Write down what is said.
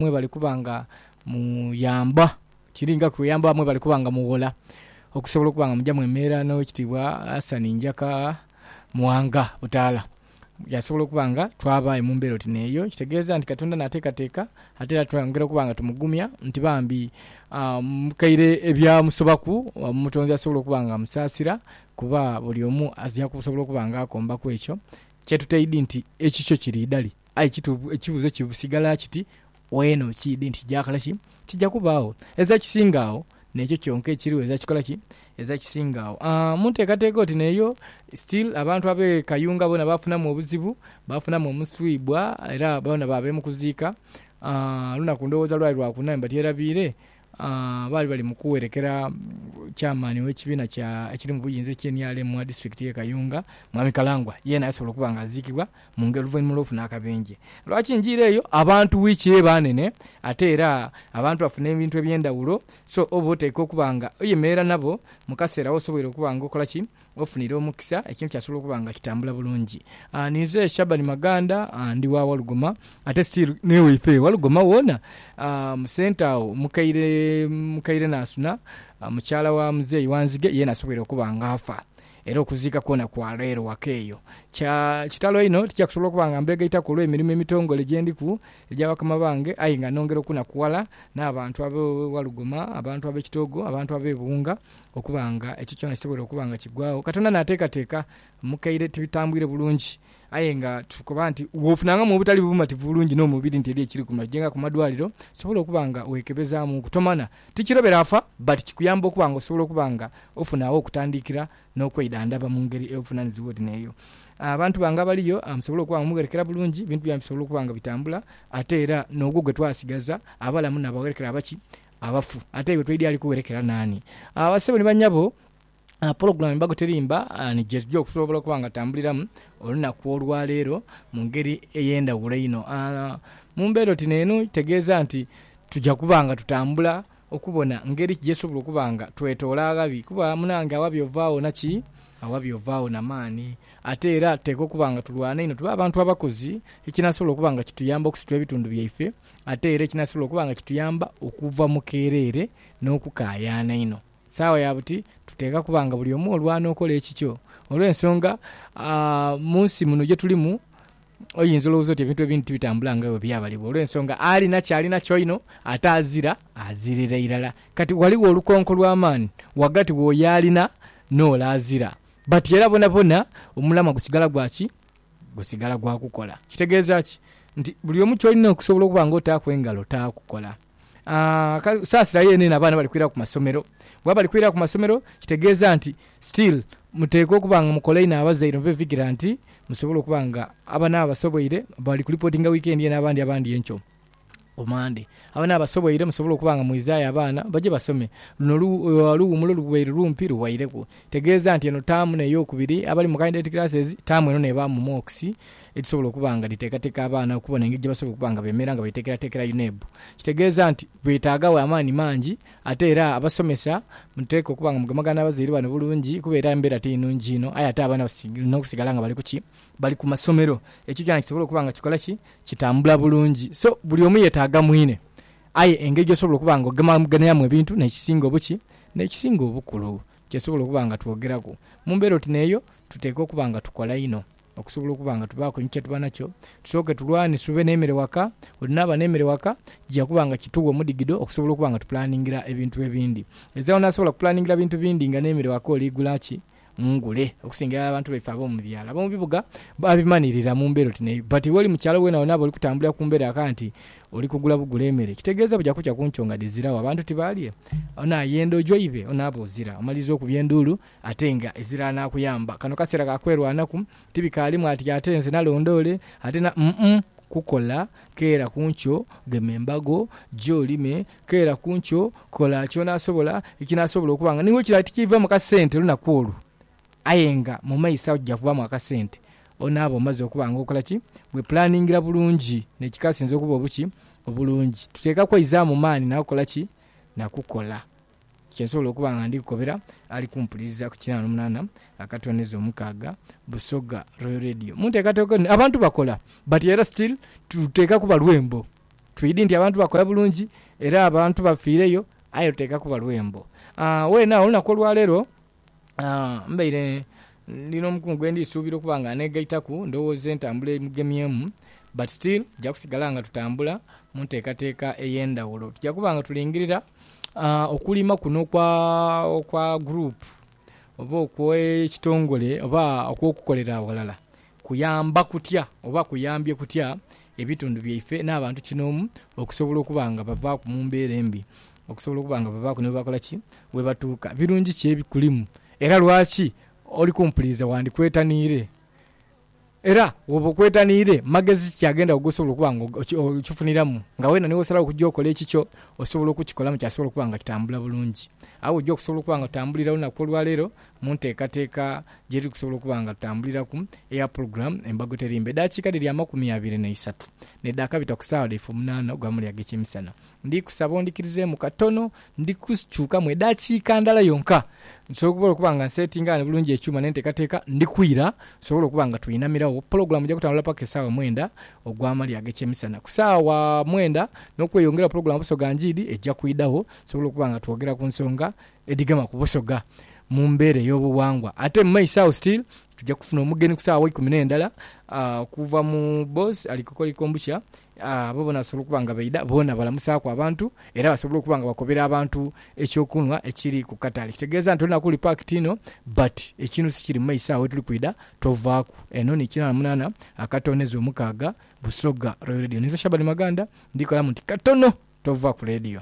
mwebali kuba nga muyamba, kiringaku kuyamba mwebali kuba nga mughola okusobola okuba nga muja mwemerera n'Owekitiibwa Hassan Njaka Muwanga Butaala yasobola okuba nga twaba aye mu mbeera oti n'eyo. Ekitegeeza nti Katonda naateekateeka ate era twongera okuba nga tumugumya nti bambi mukaire ebyamusobaku Omutonzi asobola okuba nga amusaasira kuba buli omu aja kusobola okuba nga akombaku ekyo kye tuteidhi nti ekikyo kiri idali. Aye kituufu ekibuuzo kisigala kiti, Weena okiidhi nti kyakola ki? Kija kubaagho. Eza kisinga agho n'ekyo kyonka ekiriwo eza kikola ki? Eza kisinga agho. Mu nteekateeka oti n'eyo, still abantu ab'e Kayunga boona baafunamu obuzibu, baafunamu omuswibwa era boona baabeemu kuziika. Olunaku ndowooza lwali Lwakuna, mba tyerabiire. Baali bali mu kuwerekera Chairman w'ekibiina kya ekiri mu buyinza ekya nrm mu disitulikiti y'e Kayunga, Mwami Kalangwa. Yeena yasobola okuba nga aziikibwa mu ngeri oluvainhuma olw'okufuna akabenje. Lwaki njiire eyo? Abantu wiiki eba nene ate era abantu bafuna ebintu eby'endhawulo so oba oteekwa okuba nga oyemerera nabo mu kaseera w'osoboire okuba nga okola ki? Ofunire omukisa, ekintu kyasobola okuba nga kitambula bulungi. Ninze Shaban Maganda ndi wa Walugoma ate still n'ewaife Walugoma woona mu centre agho mukaire mukaire Nansuna mukyala wa Muzeeyi Wanzige yeena asoboire okuba nga afa era okuziika kwoona kwa leero waka eyo. Kya kitalo inho tija kusobola okuba nga mbeegaitaku olw'emirimo emitongole gye ndiku egya bakama bange aye nga nongera okunakuwala n'abantu ab'e Walugoma, abantu ab'e Kitoogo, abantu ab'e Buwunga Okuba nga ekyo kyona kisobola okuba nga kigwagho, Katonda naateekateeka mu kaire tibitambwire bulungi. Aye nga tukoba nti bw'ofunangamu obutali bumativu bulungi n'omubiri nti eriyo ekiri ku ma jenga ku madwaliro, osobola okuba nga weekebezaamuuku. Tomana tikirobera afa but kikuyamba okuba nga osobola okuba nga ofuna agho okutandiikira n'okweidhandhaba mu ngeri eyobufunanizi wodi n'eyo abantu bange abaliyo musobole okuba nga mugherekera bulungi, ebintu byaimwe bisobole okuba nga bitambula ate era n'ogwo gwe twasigaza abalamu n'abagherekera abaki abafu ate iwe toidhi ali kuwerekera naani? Aah basebo ni banyabo aah pulogulamu embago teri mba ni gyetugya okusobola okuba nga tambuliramu olunaku olwa leero mu ngeri ey'endhaghulo einho. Aah mu mbeera oti n'eno kitegeeza nti tugya kuba nga tutambula okubona ngeri ki gyetusobola okuba nga twetoola aghabi kuba munange aghabi ovaagho na ki? Aghabi ovaagho na maani. Ate era tuteekwa okuba nga tulwana inho tube abantu abakozi ekinasobola okuba nga kituyamba okusitula ebitundu byaife Ate era ekinasobola okuba nga kituyamba okuva mu keereere n'okukaayaana einho, sawa ya buti tuteekwa kuba nga buli omu olwo anookola ekikyo. Olw'ensonga mu nsi muno gye tulimu oyinza olowooza oti ebintu ebindi tibitambula nga bwe byabalibwa olw'ensonga alina ky'alina kyoino ate azira azirira irala. Kati ghaligho olukonko lw'amaani ghagati w'oyo alina n'ole azira. Bati era bonabona omulamwa gusigala gwa ki? gusigala gwa kukola. Kitegeeza ki? Nti buli omu ky'olina okusobola okuba nga otaaku engalo taakukola. Saasira yeene eno abaana bali kwira ku masomero. Bwebaba bali kwira ku masomero kitegeeza nti still muteekwa okuba nga mukola inho abazaire ni bevigira nti musobole okuba nga abana basoboire bali kulipotinga wiikendi eno abandi abandi enkyo. ku Mande. Abana abasoboire musobola okuba nga mwizaayo abaana baje basome. Luno oluwumulo lubaire lumpi luwaireku. Tegeeza nti eno taamu n'eyokubiri abali mu Candidate Classes, taamu eno n'eba mu Mocks edhisobola okuba nga dhiteekateeka abaana okubona engeri gye basobola okuba nga beemera nga beteekerateekera UNEB. Kitegeeza nti bwetaagagho amaani mangi ate era abasomesa muteekwa okuba nga mugemagana n'abazaire bano bulungi kuba era embeera ti nnungi inho aye ate abaana balina okusigala nga bali ku ki? Bali ku masomero. Ekyo kyona kisobole okuba nga kikola ki? kitambula bulungi so buli omu yetaaga mwine. Aye engeri gy'osobola okuba nga ogemaganiramu ebintu n'ekisinga obuki? N'ekisinga obukulu kyetusobola okuba nga twogeraku. Mu mbeera oti n'eyo, tuteekwa okuba nga tukola inho okusobola okuba nga tubaaku ni kye tuba nakyo. Tusooke tulwane tube n'emere waka. Olinaaba n'emere waka, kija kuba nga kitugha omudhigidho okusobola okuba nga tupulaningira ebintu ebindi. Ezagho n'asobola kupulaningira bintu bindi nga n'emere waka oliigula ki? mu ngule okusinga irala abantu baife ab'omu byalo. Ab'omu bibuga babimanirira mu mbeera oti n'eyo. But w'oli mu kyalo wena wena bw'oli kutambulira ku mbeera aka nti oli kugula bugule emere, kitegeeza buja kukya ku nkyo nga dhiziragho, abantu tibaalye. Ono ayenda ojo ibe, ono abe ozira. Omaliriza okubya enduulu ate nga ezira anaakuyamba. Kano kaseera ka kwerwanaku, tibikaalimu ati ate nze nalonda ole, ate na, umm, kukola, keera ku nkyo, gema embago, gya olime, Keera ku nkyo, kola ky'onaasobola ekinaasobola okuba nga n'iwe kiraali tikiivaamu kasente lunaku olwo. Aye nga mu maiso agho kija kuvaamu akasente. Onaaba omaze okuba nga okola ki? Wepulaningira bulungi n'ekikasinze okuba obuki? Obulungi. Tuteekwa kweizaamu maani na kukola ki? Na kukola kye nsobola okuba nga ndi kukobera ali kumpuliriza ku kinaana omunaana akatooneza omukaaga Busoga Royal Radio. Mu nteekateeka eno abantu bakola, but era still tuteekwa kuba lwembo. Twidi nti abantu bakola bulungi era abantu bafiireyo aye luteeka kuba lwembo. Weena agho olunaku olwaleero mbaire ndi n'omukungu gwe ndi suubira okuba nga aneegaitaku ndowooza entambula emugemyemu but still tuja kusigala nga tutambula mu nteekateeka ey'endhaghulo. Tuja kuba nga tulingirira okulima kuno kwa guruupu oba okw'ekitongole oba okw'okukolera aghalala Kuyamba kutya oba kuyambye kutya ebitundu byaife n'abantu kinoomu okusobola okuba nga bavaaku mu mbeera embi, okusobola okuba nga bavaaku ni bwebakola ki? Bwebatuuka? Birungi ki ebikulimu era lwaki oli kumpuliriza wandikwetaniire? Era bwoba okwetaniire, magezi ki agenda ghe osobola okuba nga okifuniramu nga weena ni wosalawo okuja okola ekikyo osobola okukikolamu kyasobola okuba nga kitambula bulungi? Agho oja okusobola okuba nga otambulira olunaku olwaleero Mu nteekateeka gye tuli kusobola okuba nga tutambuliraku eya pulogulaamu Embago Terimba, edaakiika dhiri amakumi abiri na isatu ne dhaakabita ku saagha dhaife omunaana ogwa muli ag'ekyemisana. Ndi kusaba ondhikirizeemu katono, ndi kukyukamu edaakiika ndala yonka nsobole okuba nga nseetinga ghano bulungi ekyuma n'enteekateeka. Ndi kwira tusobole okuba nga tweinamiregho. Pulogulaamu eja kutambula paka esaawa mwenda ogwa mali ag'ekyemisana. Ku saagha mwenda n'okweyongeraho pulogulaamu Busoga Njiidi eja kwidhagho tusobole okuba nga twogera ku nsonga edhigema ku Busoga mu mbeera ey'obughangwa. Ate mu maiso agho still tuja kufuna omugeni ku saagha eikumi n'endala okuva mu Boss ali kukola Ikombushya. Abo boona basobola okuba nga baidha boona balamusaaku abantu era basobola okuba nga bakobera abantu eky'okunhwa ekiri ku katale. Kitegeeza nti olunaku luli packed inho but ekiinusi kiri mu maiso agho wetuli kwidha tovaaku. Eno ni Kinana Munana Akatoonheze Omukaaga, Busoga Royal Radio. Ninze Shaban Maganda, ndikalamu nti katono tova ku leediyo.